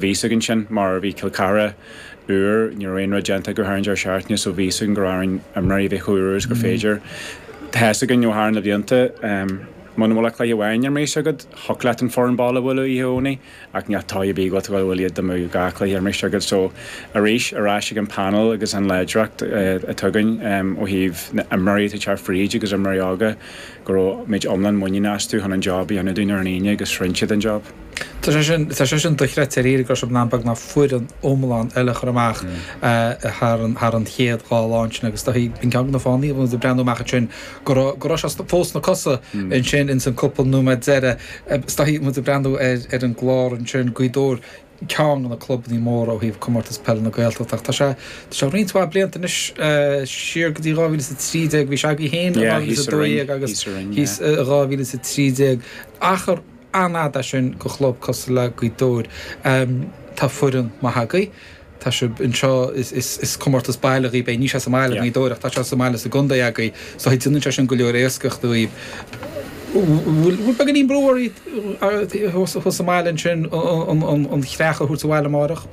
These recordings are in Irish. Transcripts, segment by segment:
bhí a fhios againn sin mar a bhí Cill Chartha uair, ní raibh aon rud déanta go háirithe deireadh seachtaine so bhí a fhios againn go raibh orainn imreoirí a bheith chomh úr is gur féidir. Tá's againn ó thar na blianta muna bhfuil ach cluiche amháin ar maos agat, thiocfadh leat an foireann baile a bhualadh oíche Dhomhnaigh ach ní hata a bhí agat, bhuel iad amuigh dhá chluiche ar maos agat so arís ar ais ag an panel agus an láidreacht atá againn ó thaobh na n-imreoirí atá ag teacht fríd agus imreoirí óga go raibh muid iomlán muiníneach astu chun an job a dhéanamh dúinn ar an Aoine agus rinne siad an job. Tá sé sin dochreidte, ar éirigh leis an bplean beagnach foireann iomlán eile a chur amach thar an chéad dhá lá ansin agus tá an ceann de na fáthannaí ag breathnú amach ansin go raibh sé fós sna cosa ansin ins an cúpla nóiméad deireadh agus tá muid ag breathnú ar an gclár ansin Gaoth Dobhair ceann de na clubannaí móra ó thaobh Comórtas Peile na Gaeltachta ach tá sé tá sé roinnt mhaith blianta anois siar go dtí 2013 bhí sé againn fhéin i 2012 agus thíos i 2013 achar an-fhada é sin do chlub cosúil le Gaoth Dobhair? Tá foireann maith agaibh. Tá sibh anseo, is comórtas baile agaibh é, níl sé sa mbaile i nGaoth Dobhair ach tá sé sa mbaile sa gcontae agaibh so déanann sé sin go leor éascach daoibh. An bhfuil beagáinín brú oraibh thuas sa mbaile ansin an chreach a thabhairt abhaile amárach?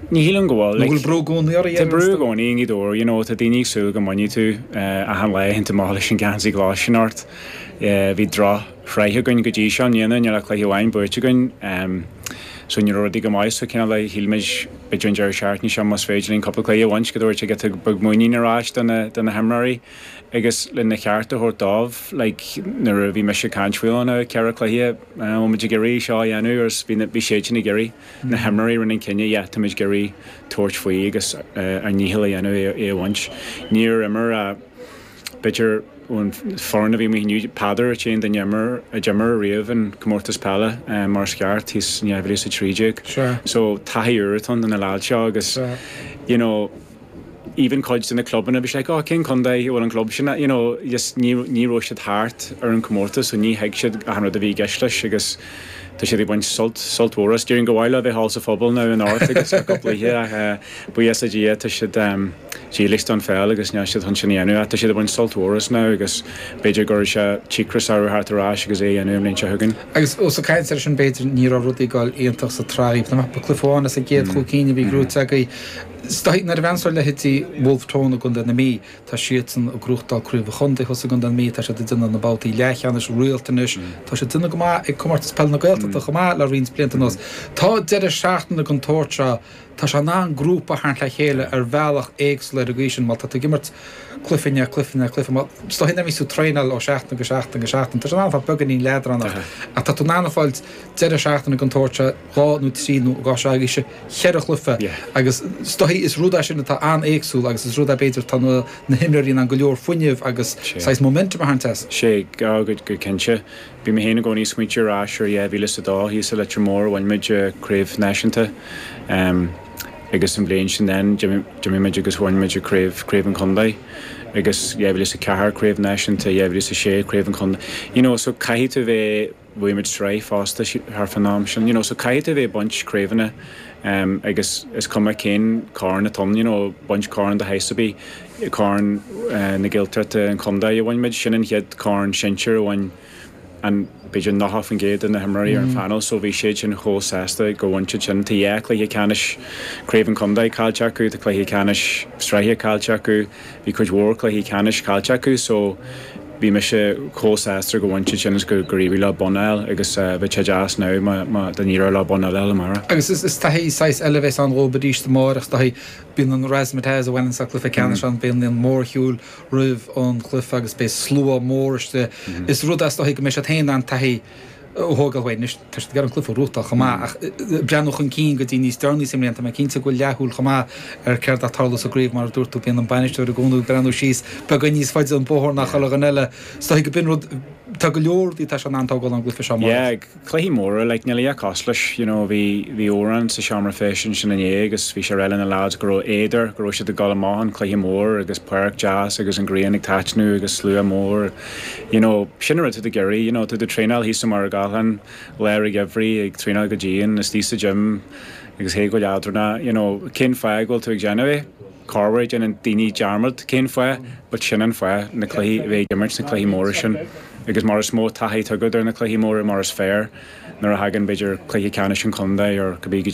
Ní shílim go bhfuil. An bhfuil brú i gcónaí oraibh? Tá brú i gcónaí i nGaoth Dobhair, you know, tá daoine ag súil go mbainfidh tú achan lá a théann tú amach leis an geansaí glas sin ort, bhí droch. shraith againn go dtí seo. Níl ach aon chluiche amháin buaite againn. So ní raibh rudaí go maith so cineál shíl muid b'fhéidir an deireadh seachtaine seo más féidir linn cúpla cluiche a bhaint, go dtabharfaidh sé giota beag muinín ar ais do na do na himreoirí. Agus lena cheart a thabhairt dóibh, like nuair a bhí mise ag caint faoi na ceithre chluiche a bhfuil muid ag iarraidh seo a dhéanamh agus bhí na bhí siadsan ag iarraidh, na himreoirí a rinne an cinneadh, yeah táimid ag iarraidh tabhairt faoi agus ár ndícheall a dhéanamh é a bhaint. Níor imir a. B'fhéidir ón foireann a bhí amuigh inniu, Peadar an t-aon duine a d'imir riamh an comórtas peile mar is ceart, thíos in 2013. So taithí úr atá ag na leaids seo agus you know even cuid de na clubanna bhí siad like oh cén contae a bhfuil an club sin as you know just ní ní raibh siad thart ar an comórtas so ní thuig siad achan rud a bhí i gceist leis agus tá siad ag baint sult sult mhór as. Déarfainn gur mhaith leo a bheith thall sa phuball now anocht agus achan oíche ach buíochas le Dia tá siad dílis don pheil agus níl siad chun sin a dhéanamh. Tá siad ag baint sult mhór as now agus b'fhéidir go gcuirfidh sé cíocras orthu teacht ar ais agus é a dhéanamh an bhliain seo chugainn. Agus os ag caint ar sin b'fhéidir ní raibh rudaí ag gabháil iontach sa tsraith riamh. Tá mé ag ceapadh cluiche amháin as an gcéad chúig cinn a bhí gnóite agaibh. Is dóigh nuair a bhreathnaíonn tú ar leithéidí Bhulf Tón i gContae na Mí. Tá siadsan ag gnóthachtáil craobh an chontae thuas i gContae na Mí. Tá siad ag déanamh na babhtaí leathcheannais go rialta anois. Tá siad ag déanamh go maith ag Comórtas Peile na Gaeltachta chomh maith le roinnt blianta anuas. Tá deireadh seachtaine den tsórt seo. Tá sé in ann grúpa a tharraingt le chéile ar bhealach éagsúil ar an gcaoi sin, má tá tú ag imirt cluichí ar chluichí ar chluichí, mar is dóichí nuair a bhíos tú ag traenáil ó seachtain go seachtain go seachtain, tá sé in ann a bheith beagáinín leadránach. Ach tá tú in ann a fháil deireadh seachtaine den tsórt seo dhá nó trí nó, i gcás seo agaibhse, cheithre chluiche. Agus is dóigh is rud é sin atá an-éagsúil agus is rud é, b'fhéidir, tá na himreoirí in ann go leor fuinnimh agus saghas momentum a tharraingt as. Sea, dhá gcuid go cinnte. Bhí mé féin i gcónaí ag smaoitiú ar ais ar dhá mhíle is a dó, thíos i Leitir Móir a bhain muid craobh náisiúnta agus an bhliain sin then d'imigh muid agus bhain muid craobh, craobh an chontae agus dhá mhíle is a ceathair, craobh náisiúnta, dhá mhíle is a sé, craobh an chontae. You know so caithfidh tú bheith, bhuaigh muid sraith fosta thart fán am sin, you know so caithfidh tú bheith ag baint craobhanna agus is cuma cén corn atá ann, you know baint corn de shaghas ar bith. Corn na Gaeltachta an chontae a bhain muid. Sin an chéad chorn sinsir a bhain an, b'fhéidir 90% de na himreoirí ar an phainéal so bhí siad sin chomh sásta gur bhain siad sin. Tá dhá chluiche ceannais craobh an chontae caillte acu, tá cluiche ceannais sraithe caillte acu, bhí cuid mhór cluichí ceannais caillte acu so bhí mise chomh sásta gur bhain siad sin agus gur éirigh leo bonn a fháil agus bheadh sé deas now má, dá n-éireodh leo bonn eile a fháil amárach. Agus is taithí saghas eile a bheas ann dhóibh arís amárach, is taithí Bíonn an razzmatazz a bhaineann le cluiche ceannais ann féin, bíonn mórshiúl roimh an gcluiche agus beidh slua mór istigh. Is rud é is dóichí go mbeidh siad féin in ann taithí a thógáil uaidh. Anois tá siad ag iarraidh an cluiche a ghnóthachtáil chomh maith ach ag breathnú chun cinn go dtí níos deireanaí sa mbliain. Tá mé cinnte go bhfuil leathshúil chomh maith ar céard atá ag tarlú sa gcraobh. Mar a dúirt tú, bíonn an bainisteoir i gcónaí ag breathnú síos beagán níos faide an bóthar ná chuile dhuine eile. Is dóichí go mbíonn rud. Tá go leor rudaí atá sé in ann a thógáil ón gcluiche seo amárach. cluichí móra like níl a dhath cosúil leis you know bhí bhí Odhrán sa seomra feistis ansin inné agus bhí sé ag rá leis na lads go raibh éad air go raibh siad ag dul amach an cluiche mór agus páirc deas agus an ghrian ag taitneamh agus slua mór you know sin an rud atá tú ag iarraidh you know tá tú ag traenáil thíos i Machaire Gathlán i lár an gheimhridh ag traenáil go dian istigh sa gym agus tú ag gabháil I dunno you know cén fáth go bhfuil tú ag déanamh é Corruair déanann daoine dearmad cén fáth, but sin an fáth, na cluichí, a bheith ag imirt sna cluichí móra sin. Agus mar is mó taithí atá agat ar na cluichí móra mar is fearr, nuair a thagann b'fhéidir cluiche ceannais an chontae or cibé caidé,